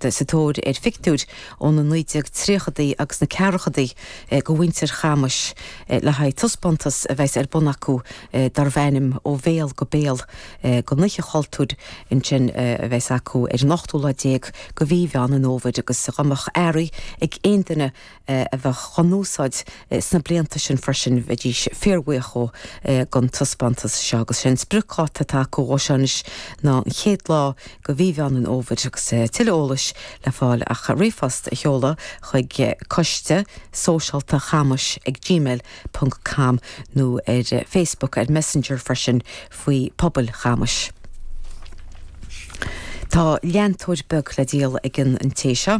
sa tóir ar phictiúir ó na 1930idí agus na ceathrachadaí go mhuintir Chamuis le haghaidh taispeántas a bheas ar bun acu darbh ainm Ó Bhéal go Béal go nOíche Chultúir ansin a bheas acu ar an ochtú lá déag go mhí Mheán an Fhómhair agus dha mbeadh earraí ag aon duine a bheadh á n-úsáid sna blianta sin freisin, bheidís fíorbhuíoch dhó gon taispeántas seo agus is é an spriocdháta atá acu dhó seo anois ná an chéad lá de mhí Mheán an Fhómhair agus tuilleadh eolais le fáil ach ríomhphost a sheoladh chuig Coiste Sóisialta Chamuis ag gmail ponc com nó ar Facebook, ar Messenger freisin faoi Pobail Chamuis. Tá leantóir beag le díol ag an té seo.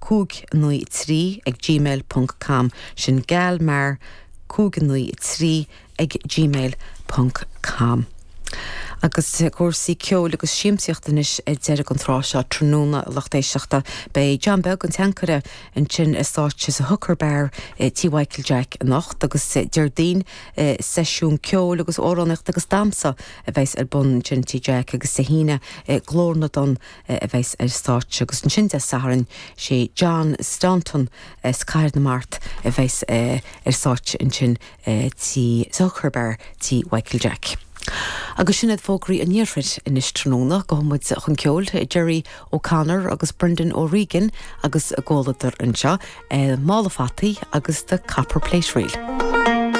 593 ag gmail ponc com Sin geal mear 593 ag gmail ponc com Agus cúrsaí ceoil agus siamsaíochta anois ag deireadh an tráth seo tráthnóna lucht éisteachta. Beidh John Beag, an teancaire, ansin ar stáitse sa Hooker Bar i Tí Mhichael Jack anocht agus Déardaoin seisiún ceoil agus amhránaíochta agus damhsa a bheas ar bun ansin i Tí Jack agus Dé hAoine Glór na dTonn a bheas ar stáitse agus ansin Dé Sathairn sé John Staunton as Cathair na Mart a bheas ar stáitse ansin sa Hooker Bar tí Mhichael Jack. Agus sin iad fógraí an iarthair anois tráthnóna gabhfaidh muid chun ceoil, Gerry O Connor agus Brendan O Regan agus a gcomhluadar anseo, Mála Fataí agus The Copper Plate Reel.